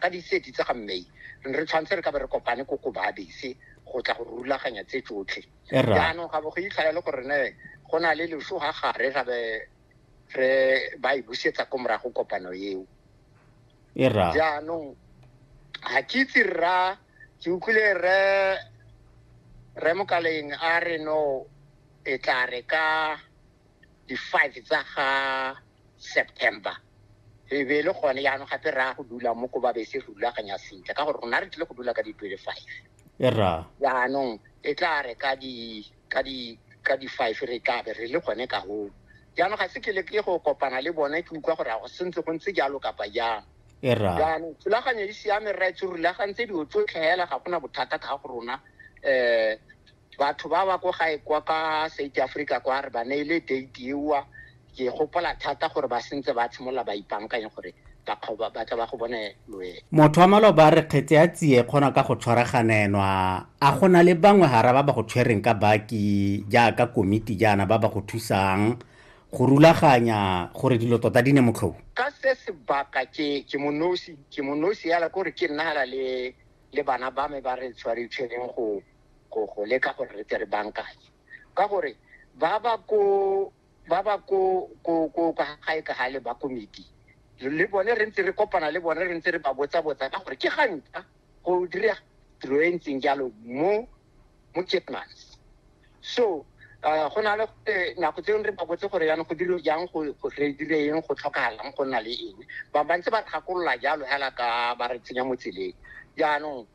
Ka di thirty tsa ga May re ne re tshwanetse re ka be re kopane ko ko babese go tla go rulaganya tse tsotlhe E rra. jaanong ga bo go itlhaya le gore ne go na le leso ga gare ga be re ba e busetsa ko morago kopano eo e rra jaanong ga ke itse rra ke utlwile re re mokaleng a re no e tla re ka di-five tsa ga september e be e le gone yaanong gape re ya go dula mo ko ba be se re rulaganya sentle ka gore rona re tlile go dula ka di-twenty five e ra yaanong e tla re ka di ka di ka di-five re tla be re le gone ka goo jaanong ga se ke le ke go kopana le bone ke utlwa gore a go sentse go ntse jalo kapa jang e ra jaanong thulaganyo e siame rra e tse rulagantse dilo tsotlhe hela ga gona bothata ka ga go rona um batho ba ba ko gae kwa ka south africa kwa re ba neile date ewa ke gopola thata gore ba sentse ba tshimolola ba ipankanye gore bakgoba ba tla ba go bone loe motho wa maloba a re kgetse ya tsie kgona ka go tshwaraganenwa a go na le bangwe gara ba ba go tshwereng ka baki jaaka komiti jaana ba ba go thusang go rulaganya gore dilo tota di ne motlhobo ka se sebaka ke ke monosi ke monosi yala kore ke nnagala le le bana ba me ba re tshwaritshwereng go go go leka gore re tle re bankanye ka gore ba ba ko ba ba ko ko ko ka gae ka gale ba komiti le bone re ntse re kopana le bone re ntse re ba botsa botsa ka gore ke gantla go dira tiro e ntseng jalo mo mo Kitmans so uh, go na le eh, nako tse re ba botse gore yana go dilo jang go go re dire eng go tlhokagalang go nna le eng ba ba ntse ba tlhakolola jalo hela ka ba re tsenya mo tseleng jaanong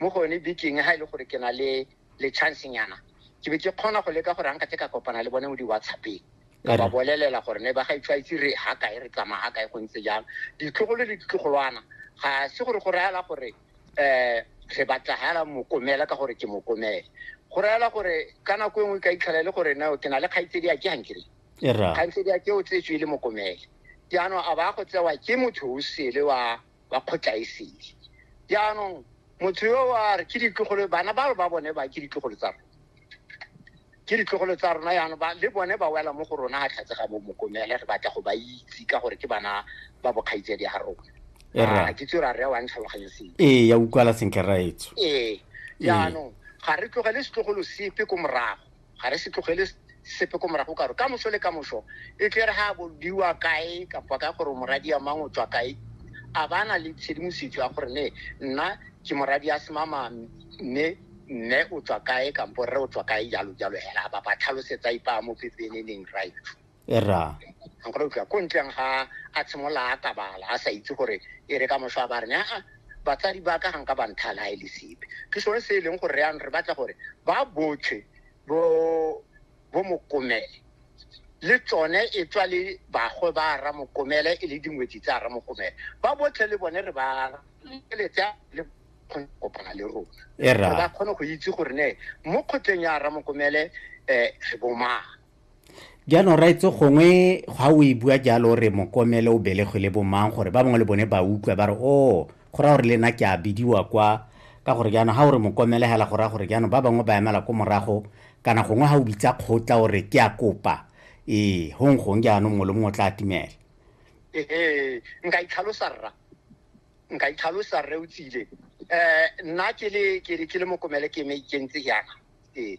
mo go yone bekeng ga e le gore ke na le le chance nyana ke be ke kgona go leka gore nka ke ka kopana le bone mo di-whatsappeng ka ba bolelela gore ne ba ga itshwaitse re ga kae re tsamaya ga kae go ntse jalo ditlogolo le ditlogolwana ga se gore go rayala gore um re batla gala mokomela ka gore ke mokomele go rayala gore ka nako e nngwe ka itlhela e le gore nao ke na le kgaitsedi a ke gankere kgaitsedi a ke o tsetswe e le mokomele jaanong a ba go tsewa ke motho o sele wa ba kgotlaesedi jaanong motho yo wa re ke ditlogolo bana ba ba bone ba ke ditlogolo tsa rona ke ditlogolo tsa rona yana ba le bone ba wela mo go rona ga tlhatse ga bo mokomele re batla go ba itse ka gore ke bana ba bokgaitsedi ga rona e ah, ke tsere a re wa ntlhaloganye seng ee ya utlwala sentle raetso ee jaanong ga re tlogele setlogolo sepe ko morago ga re se tlogele sepe ko morago karo ka moso le ka moso e tle re ga bodiwa kae kapa ka gore moradi ya mang o tswa kae a ba na le tshedimosetso ya gore ne nna ke moradi ya semama mme mme o tswa kae kampo rre o tswa kae jalo jalo hela ba ba tlhalosetsa ipa mo pepeneneng right e rraa nkgona utlwa ko ntleng ga a tshimolola a tabala a sa itse gore e re ka moso a ba rene aa batsadi ba ka ganka ba nthala ga e le sepe ke sone se e leng gore re yanong re batla gore ba botlhe bo bo mokomele le tsone e tswa le bagwe ba ra mokomele e le dingwetsi tsa ra mokomele ba botlhe le bone re ba letse le kopana le rona e ba kgone go itse gore ne mo kgotleng ya ra mokomele um re bomang jaanong raetse gongwe ga o e bua jalo re mokomele o belegwe le bomang gore ba bangwe le bone ba utlwa ba re o oh, go raya gore le nna ke a bidiwa kwa ka gore jaanong ga o re mokomele hela go raya gore jaanong ba bangwe ba emela ko morago kana gongwe ga o bitsa kgotla o re ke a kopa ee gong gong jaanong mongwe le mongwe o tla atumela ee nka itlhalosa rra nka itlhalosa rre o tsile um nna ke le mokomele ke me ikentse yana ee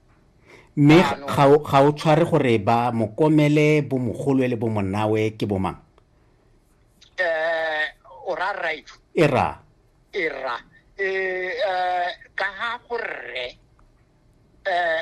mme ga o tshware gore ba mokomele bomogolwe le bomonawe ke bomang eh o ra right e ra e ra e eh, eh, ka ha go rre eh